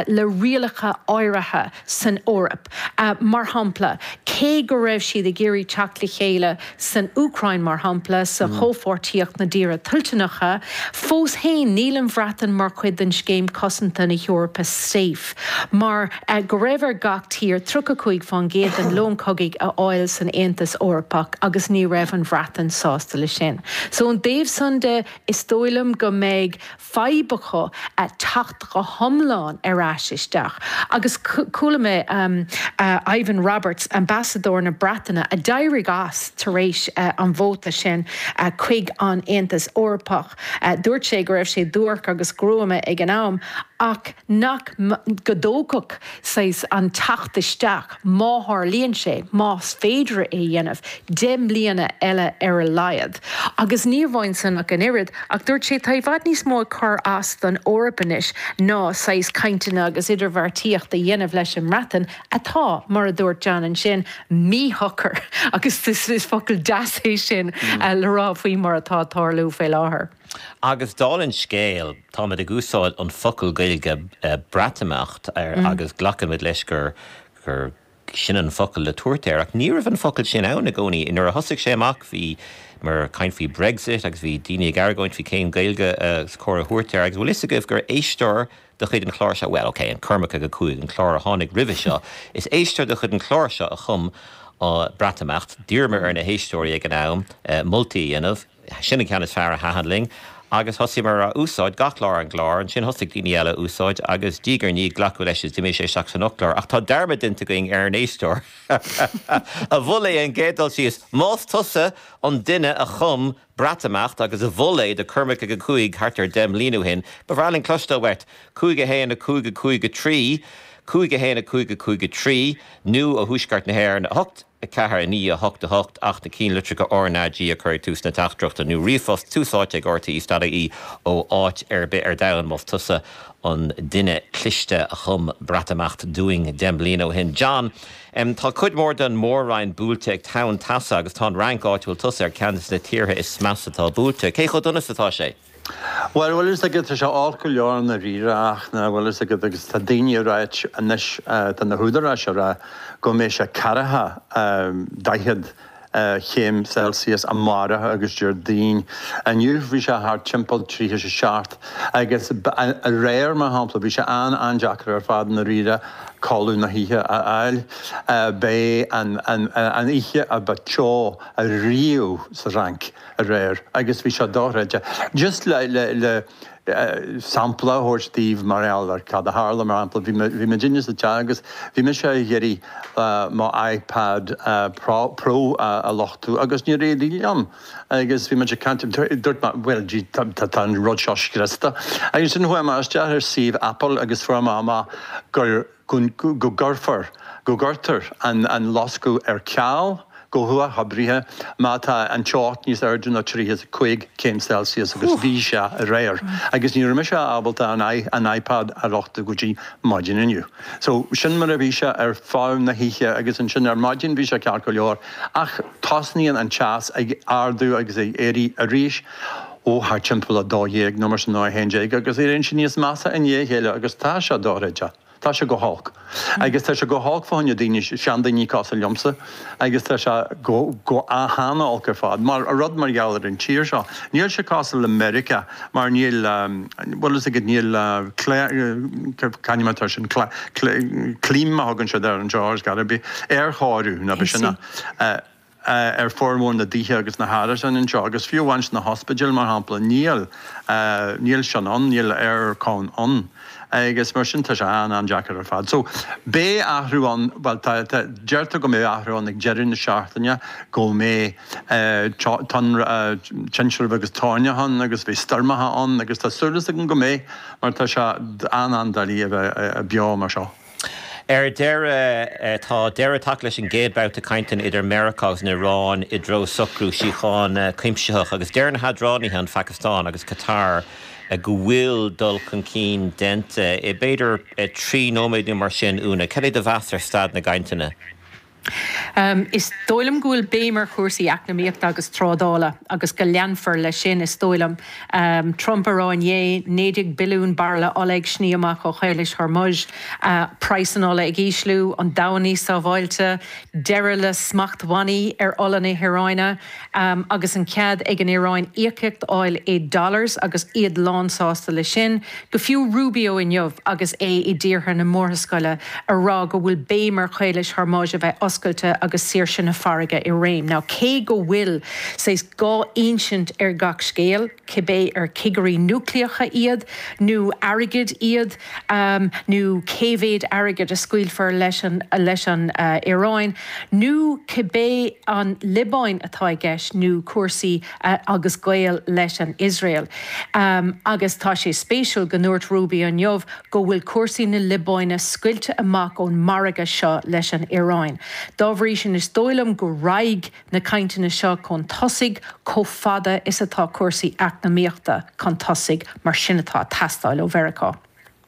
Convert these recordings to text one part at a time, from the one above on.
le rialacha áirithe san Eoraip. Mar shampla, cé go raibh siad ag iarraidh teacht le chéile san Úcráin, mar shampla, sa Chomhpháirtíocht na dTíortha Toilteanacha, fós féin níl an Bhreatain mar chuid den scéim cosanta na hEorpa SAFE, mar go raibh ar gach tír 35% den lón cogaidh a fháil san Aontas Eorpach agus ní raibh an Bhreatain sásta le sin. So ón dtaobh san de, is dóigh liom go mbeidh fadhb acu teacht go hiomlán ar ais isteach agus chuala mé Ivan Roberts, Ambasadóir na Breataine a d'éirigh as tar éis an vóta sin chuig an Aontas Eorpach, dúirt sé go raibh sé duairc agus gruama ag an am ach nach, go dtógfadh sé an teacht isteach. má tharlaíonn sé, más féidir é a dhéanamh, deich mbliana eile ar a laghad. Agus ní amháin san ach an oiread, ach dúirt sé, tá i bhfad níos mó ag cur as don Eoraip anois ná saghas cainteanna agus idirbheartaíocht a dhéanamh leis an mBreatain, atá, mar a dúirt John ansin, míshocair, agus is focal deas é sin le rá faoi mar atá ag tarlú faoi láthair. Agus dála'n scéal, táimid ag úsáid an focal Gaeilge 'Breatimeacht' agus glacaimid leis gur sin an focal le tabhairt air, ach ní raibh an focal sin ann i gcónaí. Nuair a thosaigh sé amach, bhíomar ag caint faoi Brexit agus bhí daoine ag argóint faoi cén Gaeilge is cóir a thabhairt air, agus bhfuil fhios agaibh gur éisteoir de chuid an chláir seo, bhuel, ok, an Cormac ag a Cúig, an clár a tháinig roimhe seo, is éisteoir de chuid an chláir seo a chum 'Breatimeacht', d'iarramar ar na héisteoirí ag an am moltaí a dhéanamh, Sin an ceann is fearr a thaitin linn agus thosaíomar á úsáid gach lá ar an gclár. Ansin thosaigh daoine eile á úsáid agus diaidh ar ndiaidh glacadh leis is d'imigh sé isteach san fhoclóir. Ach tá dearmad déanta againn ar an éisteoir a mhol é an gcéad dul síos. Más tusa an duine a chum Breatimeacht agus a mhol é do Cormac ag a Cúig thart ar deich mbliain ó shin, ba bhreá linn cloisteáil uait. Cúig a haon a cúig a cúig a trí Cúig a haon a cúig a cúig a trí nó ó thuaisceart na hÉireann a hocht. 4, 9, 8, 8, ach na ceannlitreacha R na G a chur ag tús na teachtaireachta nó ríomhphost tús áite ag R T E stad IE ó áit ar bith ar domhan más tusa an duine cliste a chum Breatimeacht dúinn deich mbliana ó shin. John, em, tá cuid mhór den Mhór-Roinn buailte ag tonn teasa agus tá an Fhrainc, áit a bhfuil tusa, ar ceann des na tíortha is measa atá buailte. Cé chomh dona is atá sé? Bhuel, bhfuil fhios agat, tá sé olc go leor i ndáiríre ach an bhfuil fhios agat agus tá daoine ag rá anois, tá na húdaráis ag rá go mbeidh sé ceathracha, daichead chéim Celsius amárach agus Déardaoin. Inniu bhí sé thart timpeall tríocha is a seacht agus aréir mar shampla bhí sé an-an-deacair ar fad i ndáiríre codladh na hoíche a fháil. B'é an oíche a ba teo riamh sa Fhrainc. aréir agus bhí sé dochreidte. Just le sampla a thabhairt daoibh mar gheall ar cad a tharla, mar shampla, bhí mé, bhí muid inné sa teach agus bhí mise ag iarraidh mo iPad pro a luchtú agus níor éirigh liom agus bhí muid ag caint, dúirt mé bhuel gee tá an rud seo scriosta agus ansin chuaigh mé isteach ar suíomh Apple agus fuair mé amach go gcuirfear, go gcuirtear an luchtú ar ceal go huathoibríoch má tá an teocht níos airde ná 35 céim Celsius agus bhí sé aréir agus ní raibh mise ábalta an iPad a luchtú go dtí ar maidin inniu so sin mar a bhí sé ar feadh na hoíche agus ansin ar maidin bhí sé ceart go leor ach tosnaíonn an teas ag ardú agus ag éirí arís. ó thar timpeall 12 nó mar sin nó a haon déag agus éiríonn sé níos measa i ndiaidh a chéile agus tá sé dochreidte. Tá sé go holc. Agus tá sé go holc fá choinne daoine, seandaoine cosúil liomsa agus tá sé go, go, an-olc ar fad. Mar rud mar gheall ar an tír seo. Níl sé cosúil le Meiriceá mar níl, bhuel is ag, níl cli, céard, c'ainm atá ar sin, cla, cli, clima a thugann siad air anseo, there's gotta be, aerchóiriú, nó pé sin é. ar formhór na dtithe agus na hárasáin anseo, agus fiú amháin sna hospidéil, mar shampla, níl, níl sin ann, níl aer-con ann, agus mar sin, tá sé an-an-deacair ar fad. So, beidh athrú ann, bhuel, tá, tá, deirtear go mbeidh athrú ann ag deireadh na seachtaine, go mbeidh tonn-ra-ah, tintreach agus tóirneach ann agus beidh stoirmeacha ann agus tá súil agam go mbeidh, mar tá sé an-an-doiligh a bheith beo mar seo. Ar deireadh, tá deireadh tagtha leis an gcéad babhta cainteanna idir Meiriceá agus an Iaráin i dtreo socrú síochána cuimsitheach, agus deir na hidirghabhálaithe, an Phacastáin agus Catar, go bhfuil dul chun cinn déanta. B'fhéidir trí nóiméad nó mar sin, Úna, cad é do mheas ar staid na gcainteanna? Is dóigh liom go bhfuil béim ar chúrsaí eacnamaíochta agus trádála agus go leanfar leis sin, is dóigh liom. Trump ag rá inné, naoi déag billiún bairille ola ag sní amach ó Chaolais Hormuz, praghas na hola ag ísliú, an domhan níos sábháilte, deireadh le smachtbhannaí ar ola na hIaráine agus an cead ag an Iaráin íocaíocht a fháil i dollars agus iad lánsásta leis sin. Go fiú Rubio inniu agus é i dtíortha na Murascaille ag rá go bhfuil béim ar Chaolas Hormuz a bheith oscailte agus saoirse na farraige i réim. Now cé go bhfuil saghas dhá insint ar gach scéal, cibé ar chigirí núicléacha iad nó airgead iad nó cé mhéid airgid a scaoilfear leis an Iaráin nó cibé an Liobáin atá i gceist nó cúrsaí agus gaol leis an Iosrael. Agus tá sé spéisiúil go ndúirt Rubio inniu go bhfuil cúrsaí na Liobáine scoilte amach ón margadh seo leis an Iaráin. Dá bhrí sin is dóigh liom go raghaidh na cainteanna seo chun tosaigh chomh fada is atá cúrsaí eacnamaíochta chun tosaigh, mar sin atá ag teastáil ó Mheiriceá.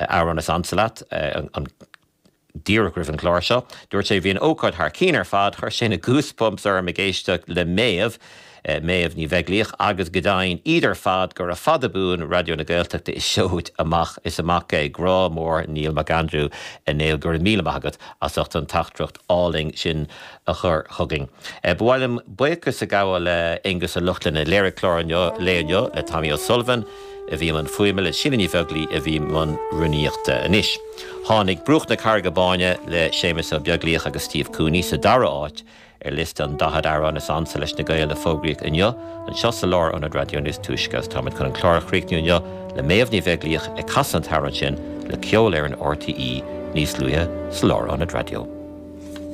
Amhrán is ansa leat an. díreach roimh an gclár seo. Dúirt sé bhí an ócáid thar cinn ar fad, chuir sé na goosebumps orm ag éisteacht le Méabh, Méabh Ní Bheaglaoich, agus go deimhin, iad ar fad, gura fada buan Raidió na Gaeltachta is seoid amach is amach é. Grá mór Neil McAndrew. A Néill, go raibh míle maith agat as ucht an teachtaireacht álainn sin. a chur chugainn. Ba mhaith liom buíochas a ghabháil le Aonghus Ó Lochlainn a léirigh clár an lae inniu, le Tommy O'Sullivan a bhí i mbun fuaime, le Síle Ní Bheaglaoi a bhí i mbun rúnaíochta anois. Tháinig Bruach na Carraige Báine le Séamus Ó Beaglaoich agus Steve Cooney sa dara áit ar liosta an 40 amhrán is ansa leis na Gaeil a fógraíodh inniu anseo sa lár ionad raidió níos túisce agus táimid chun an clár a chríochnú inniu le Méabh Ní Bheaglaoich ag casadh an t-amhrán sin le Ceolfhoireann RTÉ níos luaithe sa lár ionad raidió.